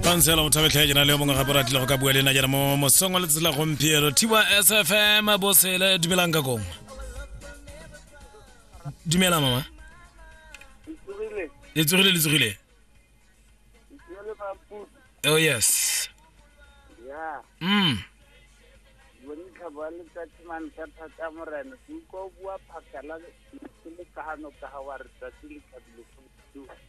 pansela o thabetlha jena le yo mongwe gape ratile go ka bua le ena jana mo mosong wa letsela gompieno thiwa sfm bosele dumelang ka kongwe dumela mama le tsogile le tsogile oh yes mm ke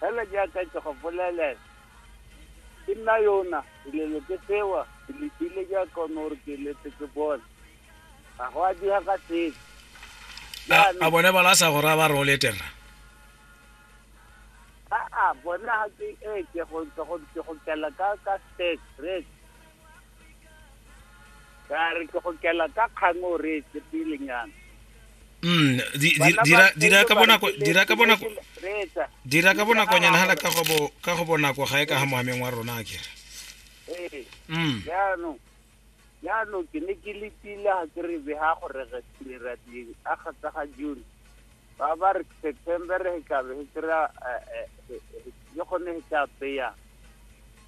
fela jaaka ke go bolelela ke nna yona dilelo ke tsewa ke letile jaaka one gore ke letse ke bone ga go a diga ka sepe a a bone bala a sa go raya ba re o letera aa bone ga ke ee ke go ke go ke go kela ka ka state rate ka re ke go kela ka kgang o re e tsepelenyana mm di- di- dira dira ka bonako dira ka bonako reetsa dira ka bonakonyana hala ka go bo- ka go bonako ga e ka ga moameng wa rona a kere ee mm jaanong jaanong ke ne ke letile ga ke re be ga gore re direra ding a kgatsa ga june ba ba re september re tlabe re kry-a eh, eh, eh, eh, ke gone re tla peyang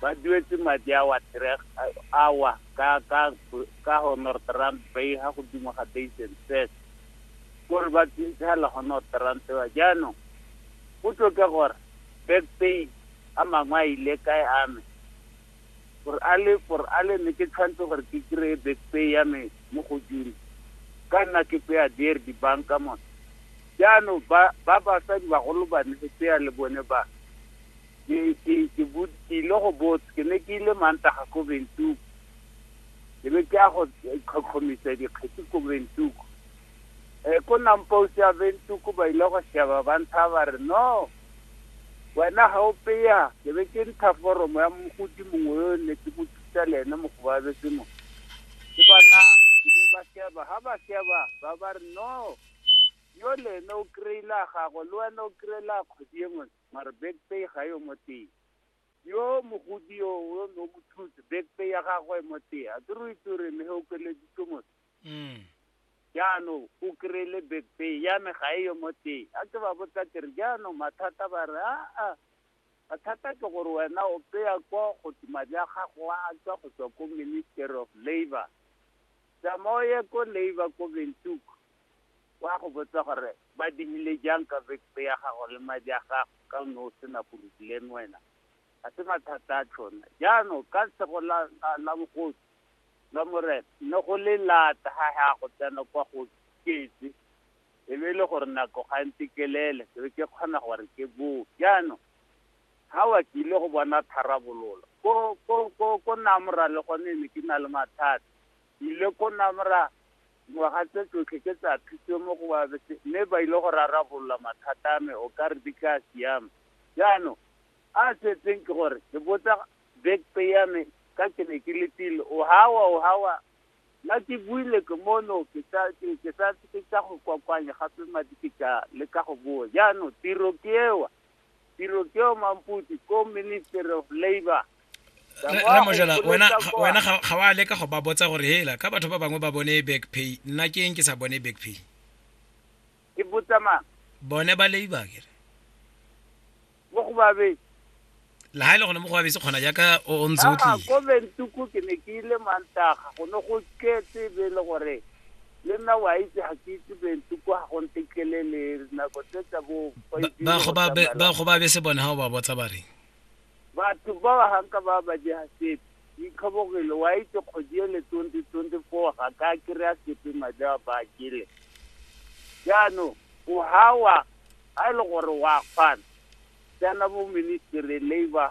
ba duetse madi a wa three a wa ka ka ka honorable rand bay ha godimo ga base and set gore ba tsintshela honorable rand ba jaanong go tloke gore back pay a mangwe a ile kae a me gore a le gore a le ne ke tshwanetse gore ke kry-e back pay ya me mo go june ka nna ke peya deer dibanka mone jaanong ba ba basadi bagolo ba ne tseya le bone ba ke ke ke bot ke ile go bot ke ne ke ile mantaga ko Windhoek ke be ke ya go tlhotlhomisa dikgetsi ko Windhoek eh ko nampousi ya Windhoek ba ile go sheba ba ntsha ba re no wena ga o peya ke be ke ntsha foromo ya mogodi mongwe yo ne ke mo thusa le ene mogobabetse mo ke bona ke be ba sheba ga ba sheba ba ba re no yo le ene o kry-ile a gago le wena o kry-ile a kgodi e ngwe mare back pay ga yo mo teng yo mogodi yo o no mo thutse back pay ya gagwe e mo teng a ke re itse gore ne o keleditse motho Mm. jaanong o kry-ile back pay ya me ga e yo mo teng a ke ba botsa ke re jaanong mathata ba re aa mathata ke gore wena o peya kwa go tse madi a gago a tswa go tswa ko ministry of labour tsamao ye ko labour ko bentuku o a go botsa gore ba dirile jang ka vekete ya gago le madi a gago ka o ne o sena porobileme wena ga se mathata a tshona jaanong ka tshego la la- la bogosi la morena ne go le lata ga ya go tsena kwa go ketse e be e le gore nako ga ntse kelele ke be ke kgona gore ke boo jaanong ga wa ke ile go bona tharabololo ko ko ko ko namora le gone ne ke na le mathata Ile ko Namra, ngwaga tse tsotlhe ke tsa thuto mo go ba bese, mme ba ile go rarabolola mathata a me, o ka re di tla siama. Jaanong, a a setseng ke gore, ke botsa back pay ya me, ka ke ne ke letile, o hawa, o hawa, nna ke buile ke mono, ke sa, ke, ke sa, ke tla go kokoanya gape madi ke tla leka go boa. Jaanong, tiro ke ewa. tiro ke o mamputsi ko ministry of labor ramojala wena wena ga wa leka go ba botsa gore hela ka batho ba bangwe ba bone back pay nna ke eng ke sa bone back pay ke botsa mang bone ba labor kere mo go babe la ha ile gone mo go babese kgona jaaka o ntse o tlile ko bentuku ke ne ke ile mantaga go ne go tletse be le gore le nna wa itse ga ke itse bentu kwa ga go ntetlele le nako tse tsa bo ba go ba be se bone ga o ba botsa ba reng batho ba ba ganka ba ba je ga sepe itlhobogile wa itse kgodi ele twenty twenty four ga ka kry-a sepe madi a ba kele jaanong o gawa ga e le gore wa kgwana tsena bo ministry labor